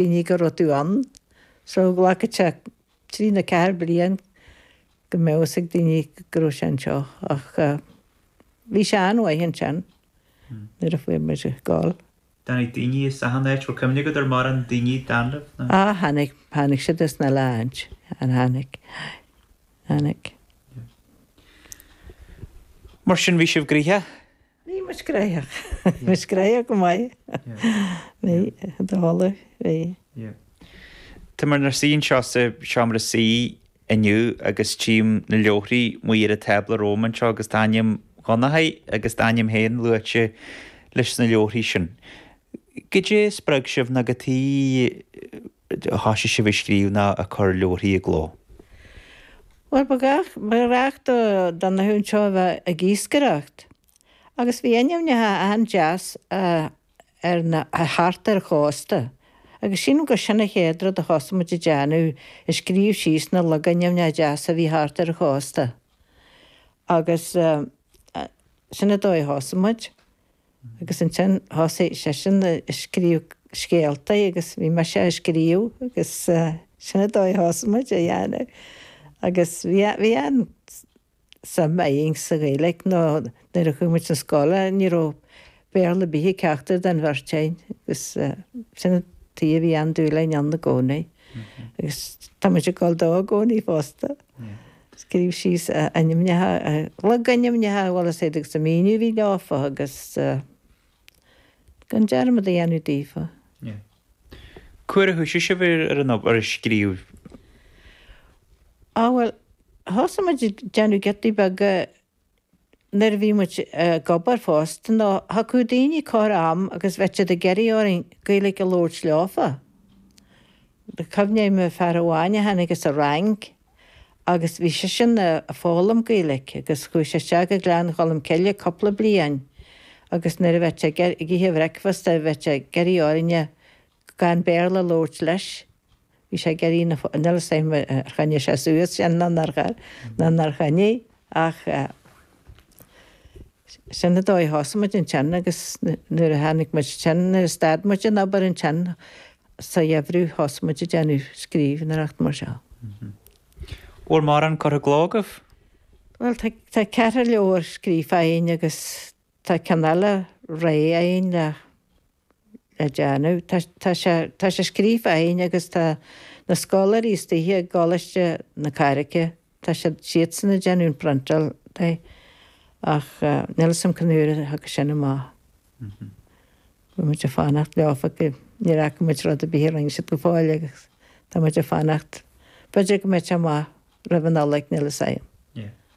daoine go raibh tú ann. So glacfaidh sé trí nó ceathair de bhlianta go mbeadh fhios ag daoine go raibh sé anseo ach bhí sé an-mhaith ansin nuair a fuair muid gal. Tháinig daoine is achan áit, bhfuil cuimhne agat ar mhórán daoine a tháinig chugaibh nó? Á tháinig, tháinig siad as na Stáit, an tháinig, tháinig. Mar sin bhí sibh gnoitheach. Bhí muid gnoitheach. Bhí muid gnoitheach go maith. Bhí, dála, bhí. Tá muid inár suí anseo sa seomra suí inniu agus tchím na leabharthaí amuigh ar an tábla romham anseo agus tá ainm Dhonnachadh agus d'ainm féin luaite leis na leabharthaí sin. Goidé a spreag sibh nó cad chuige. thosaigh sibh ag scríobh ná ag cur leabharthaí i gcló. Bhuel, ba ghnách, ba ghnách do, do Dhonnchadh anseo a bheith ag iascaireacht, agus bhí ainmneacha an-deas ar na, thart ar chósta, agus sílim gur sin an chéad rud a thosaigh muid ag déanamh, ag scríobh síos na logainmneacha deasa a bhí thart ar an chósta, agus sin an dóigh a thosaigh muid. agus ansin thosaigh seisean a scríobh scéalta agus bhí mise á scríobh agus sin an dóigh a thosaigh muid a dhéanamh agus bhí, bhí an-suim againn sa Ghaeilge nó nuair a chuaigh muid chun scoile ní raibh Béarla ar bith ag ceachtar den bheirt againn agus sin an t-am a bhí an-dúil againn ann i gcónaí agus tá muid ag dul dó i gcónaí fosta. Scríobh síos na hainmneacha, na logainmneacha, an bhfuil a fhios agat agus an míniú a bhí leofa agus gan dearmad a dhéanamh daofa. Cá huair a thoisigh sibh a scríobh? Á bhuel, thosaigh muid ag déanamh giotaí beaga nuair a bhí muid ag obair fosta, nó thiocfadh daoine corr am agus bheadh siad ag iarraidh orainn Gaeilge a labhairt leofa. Cuimhním ar fhear amháin a tháinig as an Fhrainc agus bhí seisean a' foghlaim Gaeilge agus chuaigh sé isteach go Gleann Cholm Cille cúpla bliain agus nuair a bheadh sé ag ithe a bhreicfeasta bheadh sé ag iarraidh orainne gan Béarla a labhairt leis. Bhí sé ag iarraidh, níl a fhios agam ar choinnigh sé suas sin, nó nár chaill, nó nár choinnigh ach sin an dóigh a thosaigh muid ansin agus nuair a tháinig muid ansin, nuair a stad muid den obair ansin sa gheimhreadh, thosaigh muid ag déanamh scríbhneoireacht mar seo. Bhfuil mórán curtha i gcló agaibh? Bhuel, tá, tá ceithre leabhar scríofa againn agus tá ceann eile réidh againn le. le déanamh. Tá sé tá sé scríofa againn agus tá na scoláirí istigh i gColáiste na Carraice, tá siad siadsan a' déanamh an phriontáil de ach níl 'fhios a'm cén uair a thiocfaidh sin amach. Bhí muid a' fanacht leofa ach níor fhaca muid rud a' bith a rinne siad go fóill agus tá muid a' fanacht, b'fhéidir go mbeidh sé amach roimh an Nollaig, níl 'fhios a'm. Yeah.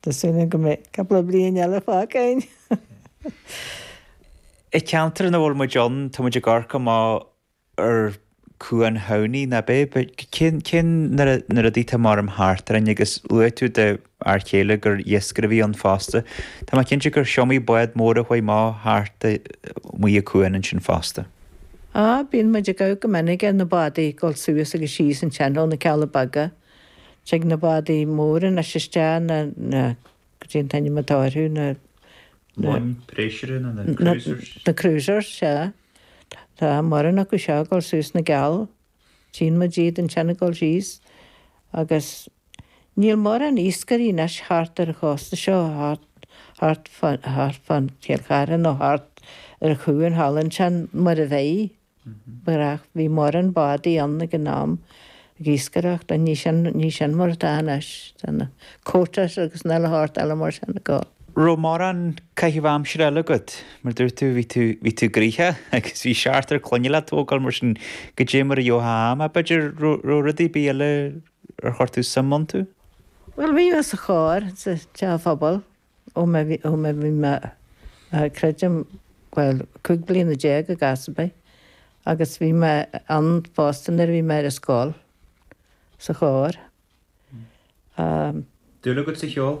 Tá súil agam go mbeidh cúpla bliain eile fágtha againn. I gceantar ina bhfuil muid ann, tá muid ag amharc amach ar Chuan Thamhnaigh, ná beidh? Cén, cén, na rudaí atá mar am thart orainn agus luaigh tú do fhear chéile gur iascaire a bhí ann fosta. Tá mé cinnte gur iomaí bád mór a chuaigh mall thart amuigh a cuan ansin fosta. Á, bíonn muid ag amharc go minic ar na bádaí ag dul suas agus síos ansin i dtreo na Cealla Beaga. Tig na bádaí móra anois isteach, na, na, goidé an t-ainm atá orthu, na, na, Món préisire na, na na, cruisers. na cruisers, sea. Tá mórán acu seo ag dul suas 'na gCeall. Tchíonn muid iad ansin ag dul síos. Agus níl mórán iascairí anois thart ar an chósta seo, thart, thart fán, thart fán Chill Chartha nó thart ar Chuan Theilinn ansin, mar a bheadh. Marach bhí mórán bádaí ann ag an am ag iascaireacht ach níl sin níl sin mar atá anois. Tá na quotas agus an uile shórt eile mar sin ag gabháil. raibh mórán caitheamh aimsire eile agat. Mar dúirt tú, bhí tú bhí tú gnoitheach agus bhí seachtar clainne le tógáil mar sin goidé mar a gheobhthá am. Ach b'fhéidir raibh raibh rudaí ar bith eile ar chuir tú suim iontu? Bhuel, bhí mé sa chór, sa teach phobail. Ó mé bhí mé, creidim, bhuel, cúig bliana déag agus fiche agus bhí mé ann fosta nuair a bhí mé ar an scoil, sa chór. Dúil agat sa cheol?